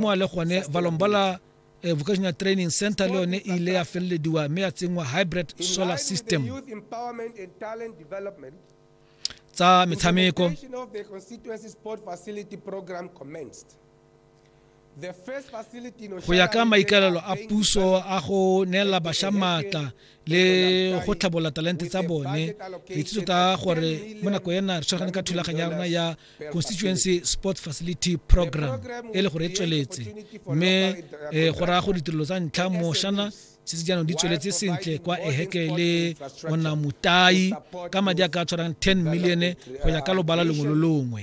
moa le gone valombola eh, vocational training center le yone e ile ya felelediwa mme ya tsenngwa hybrid solar system tsa metshameko go ya ka maikaelelo a puso a go neela basha maatla le go tlhabola talente tsa bone itse tota gore mo nako ena re tshwaragane ka thulaganyo ya rona ya constituency sport facility program e le gore e tsweletse mme eh, go raya go ditirelo tsa ntlha moshana se se jaanong di tsweletse sentle kwa eheke le ona motai ka madi a ka tshwarang 10 million go ya ka lobala lengwe lo longwe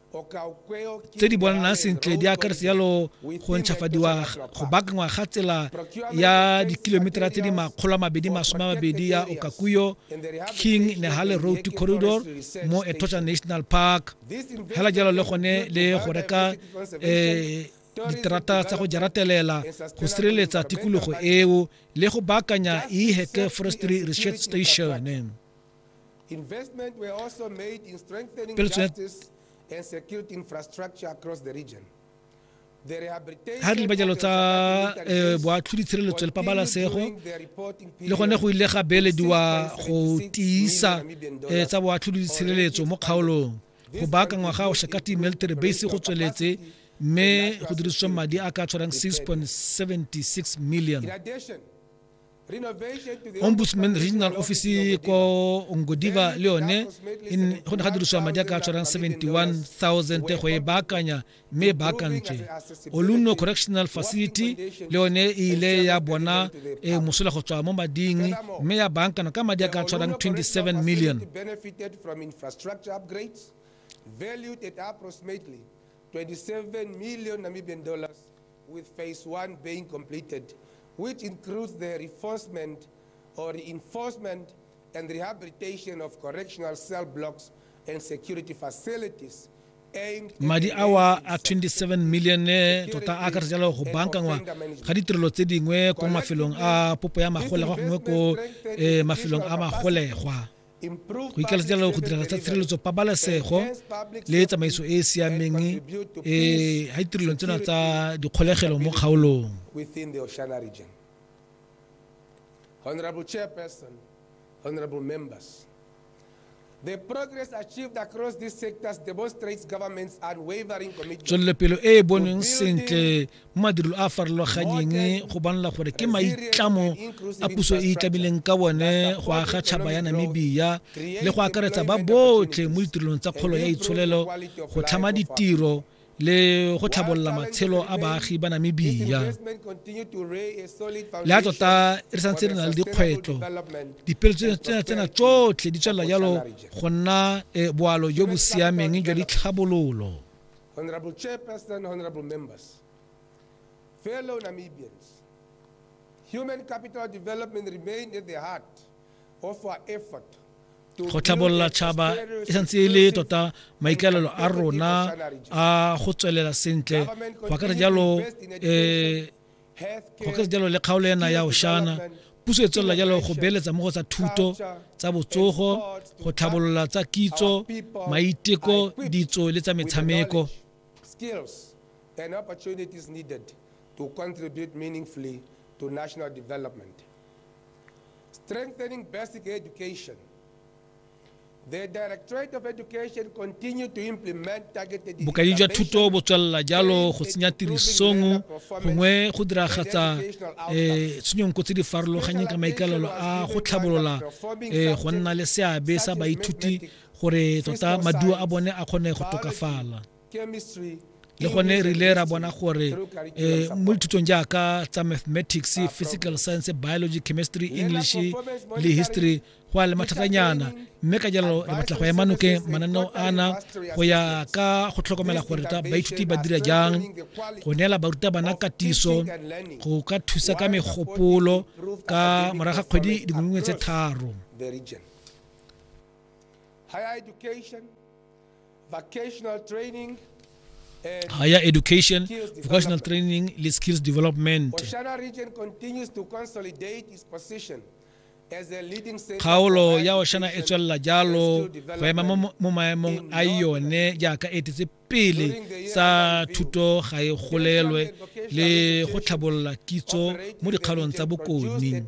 tse di bonanang sentle di akaretsa jalo go ntšhafadiwa go baakangwa ga tsela ya dikilometera tse di makgolo a mabedi masome a mabedi ya okakuyo king nehale road corridor mo etocha national park hela jalo le gone le go reka um diterata tsa go jaratelela go sireletsa tikologo eo le go baakanya e forestry research station Investment were also made in strengthening justice and security infrastructure across the region. ga re dibajalo tsa eh, boatlhodi tshireletso le pabalesego le gone go ile ga beelediwa go tiisa eh, tsa boatlhodi tshireletso mo kgaolong go baakangwa ga oshakati military base go tsweletse mme go dirisitswe madi a ka tshwarang 6.76 million ombudsman regional office ko ngodiva leone in go ne ga dirisiwa madi a ka tshwarang 71000 te go e baakanya mme e baakantswe oluno correctional facility le yone e ile ya bona e mosola go tswa mo mading mme ya baankana ka madi a ka tshwarang 27 million valued at approximately 27 million Namibian dollars With phase one being completed, which includes the reinforcement or reinforcement and rehabilitation of correctional cell blocks and security facilities, madi awa a 27 million tota a akaretsa jalo go bankangwa ga ditirelo tse dingwe ko mafelong a popo ya magolegwa gongwe ko eh, mafelong a magolegwa go ikalasetsa go dira tsa tshireletso pabalesego le tsamaiso e e siameng e ga ditirelong tsena tsa dikgolegelo mo kgaolong Honorable Chairperson, Honorable Members, The progress achieved across these sectors demonstrates government's unwavering commitment. Tswelelopele e e boneng sentle mo madirelo a a farologanyeng go bonala gore ke maitlamo a puso e itlamileng ka one go aga tšhaba ya namibia le go akaretsa ba botlhe mo ditirelong tsa kgolo ya itsholelo go tlhama ditiro le go tlhabolola matshelo a baagi ba namibia le a tota re santse re na le dikgwetlho dipeletso tsena tsotlhe di tswelela jalo go nna eh, boalo jo bo siameng jwa ditlhabololo Honorable Chairperson, honorable members, fellow Namibians, human capital development remained at the heart of our effort go tlhabolola tšhaba e santse e le tota maikaelelo a rona a go tswelela sentle go akara jalo um go ka se jalo le kgaolo ena ya oshana puso e tswelela jalo go beeletsa mo go tsa thuto tsa botsogo go tlhabolola tsa kitso maiteko ditso le tsa metshameko and opportunities needed to contribute meaningfully to national development. Strengthening basic education bokaedi jwa thuto bo tswelela jalo go tsenya tirisong gongwe go diragatsa um eh, tshenyonko tse di farologanyeng ka maikalelo a go tlhabolola um go nna le seabe sa baithuti gore tota maduo a bone a kgone go tokafala le gone re ile ra bona gore eh, mo dithutong jaaka tsa mathematics physical science biology chemistry english le history go a le mathatanyana mme ka jalo re batla go ema nokeng mananeo ana go ya ka go tlhokomela gore baithuti ba dira jang go neela barutabana katiso go ka thusa ka megopolo ka morago ga kgwedi dingwe tse tharo higher education, vocational training, le skills development. kgaolo ya oshana e tswelela jalo go ema mo maemong a yone jaaka e tetse pele sa thuto ga e golelwe le go tlhabolola kitso mo dikgaolong tsa bokone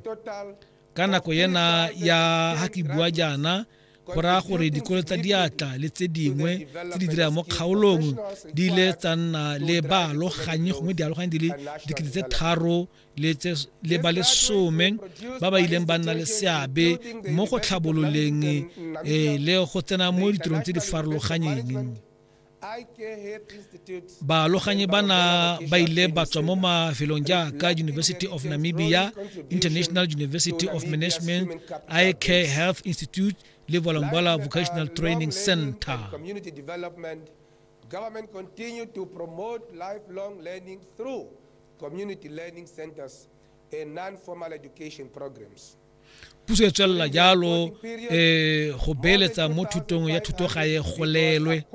ka nako ena ya ha ke bua jaana go raya gore dikolo tsa diatla le tse dingwe tse di dirang mo kgaolong di ile tsa nna le baaloganyi gongwe dialoganyi di le dikete tse tharo le ba lesome ba ba ileng ba nna le seabe mo go tlhabololeng eh, le go tsena mo ditirong tse di farologanyeng baaloganyi bana ba ile ba tswa mo mafelong jaaka university of namibia international university of management ik health institute le volambala vocational training center government continue to promote lifelong learning through community learning centers and non-formal education programs puso e tswelela jalo um go beeletsa mo thutong ya thuto ga e golelwe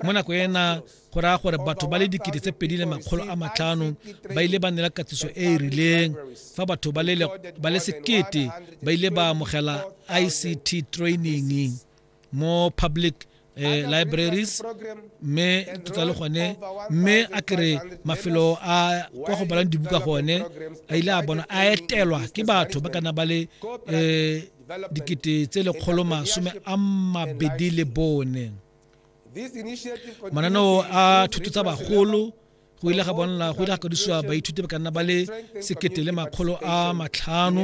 mo nako ena go raya gore batho ba le dikete tse pedi le makgolo a matlhano ba ile ba nela katiso e e rileng fa batho ba le sekete ba ile ba amogela ict training mo public eh, libraries mme ke tla le gone mme a kere mafelo a kwa go balang dibuka gone a ile a bona a etelwa ke batho ba kana ba le um dikete tse lekgolo masome a mabedi le bone mananeo a thuto tsa bagolo go ile ga bonala go ile ga kadisiwa baithuti ba ka nna ba le sekete le makgolo a matlhano